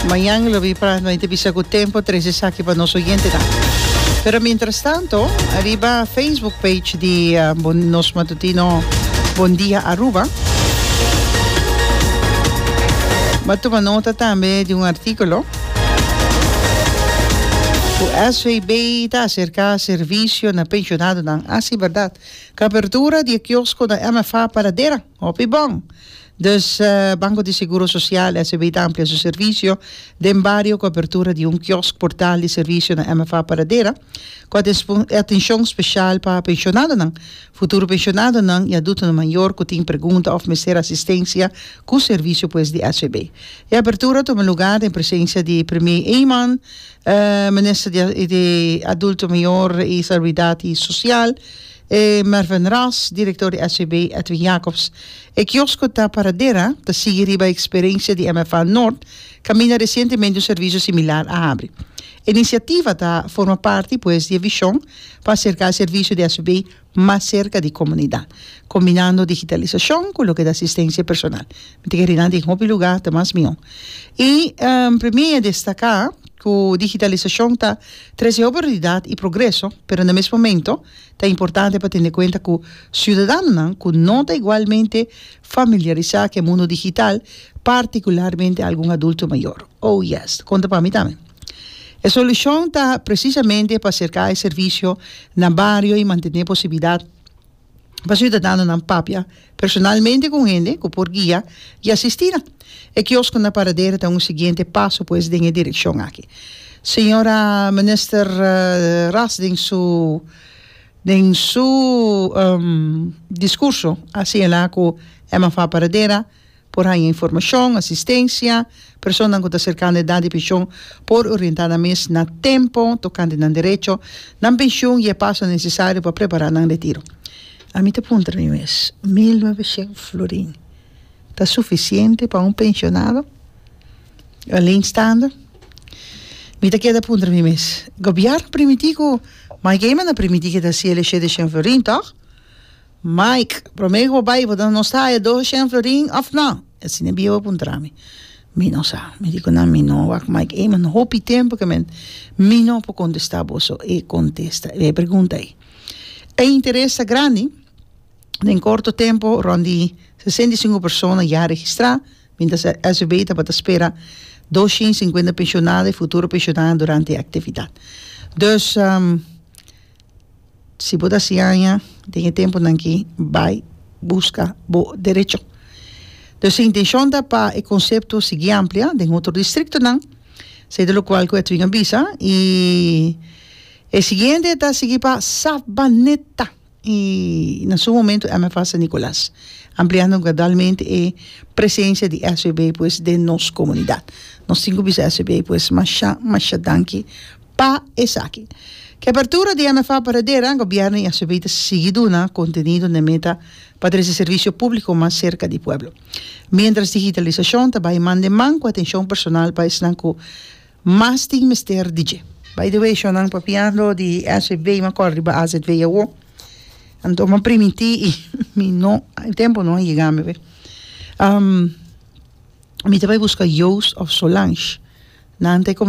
Mañan e lobi prat no a inter bisa cu tempo tres esaki pa nos oyentenan. Pero mientras tanto, ariba Facebook page di uh, bon, nos matutino Bon Dia Aruba, va toma nota también de un artículo cu SVB ta acerca servicio na pensionado nan. Así, verdad. Cobertura di kiosco na MFA Paradera. Hopi bon! Dus Banco di Seguro Social, SEB, ta amplia su servicio den bario cu apertura di un kiosk portal di servicio na MFA Paradera, cu a disponer atencion special pa pensionadonan, futuro pensionadonan y adultonan mayor cu tin pregunta of mester asistencia cu servicio pues di SEB. E apertura tuma lugar den presencia di Premier Eman, Minister di Adulto Mayor y Salubridad y Social, E Mervyn Ras, direktor di SVB Edwin Jacobs, E kiosko ta paradera, ta sigui riba e eksperensia di MFA Nort, kaminda resientemente un servisio similar a habri. E inisiativa ta forma parti pues di e vishon pa aserká e servisio di SVB mas serka di komunidat, kombinando digitalisashon ku loke ta asistensia personal. Mi ta kere nan den hopi lugá ta mas mihó. I Premier a destaká ku digitalisashon ta trese hopi oportunidat i progreso, pero na mes momento, Ta importante pa tene kuenta ku siudadanonan ku no ta igualmente familiarisá ku e mundu digital, partikularmente algun adulto mayor. Oh yes, konta pa mi tambe. E solushon ta presisamente pa serká e servisio na bario i mantené posibilidat pa siudadanonan papia. personalmente cu un hende cu por guia y asistina. E kiosko na Paradero ta un siguiente paso pues den e direccion aki. Sra. Minister Ras den su den su discurso a señala cu MFA Paradera Por haña informashon, asistensia. Personanan ku ta serkando e edat di penshon por orientá nan mes na tempu tokante nan derecho, nan penshun i e paso nesesario pa prepará nan retiro. Ami ta puntra mi mes, mil noveshen florin ta sufisiente pa un penshonado aleenstaande? Mi ta keda puntra mi mes, Gobièrnu primiti ku Mike Eman a primiti ke ta hasié leshedeshen florin, tòg? Mike, Promé ku bo bai, bo ta nos haya dos shen florin òf nò? E asina e biewa puntra mi. Mi no sa. Mi di ku nan mi no wak Mike ei, man hopi tempu ke men mi no por kontestá boso e kontesta, e pregunta ei. E interes ta grandi, den korto tempu rònt di sesenta i sinku persona ya registrá, miéntras di SVB tabata spera dos shen i sinkuenta penshonado i futuro penshonado durante e aktividat. Dus. Si bo ta siaña den e tempunan ki bai buska bo derecho. Entonces e intencion ta pa e concepto sigui amplia den otro districtonan sedu locual cu Edwin a bisa y e siguiente ta sigui pa Sabaneta y na su momento MFA San Nicolas ampliando gradualmente e presencia di SBB pues den nos comunidad. Nos tin cu bisa SBB pues masha masha danki. Pa esaki, ku e apertura di MFA Paradera, gobièrnu i asb ta sigui duna kontenido n'e meta pa trese servisio públiko mas serka di pueblo. Miéntras digitalisashon ta bai man den man ku atenshon personal pa esnan ku mas tin mester di dje. By the way, shonnan papiando di asb mi a kòrda riba azv awo. Anto mi a primintí i mi no e tempu no a yega mi awe. Mi ta bai buska Joost òf Solange. Nan ta e.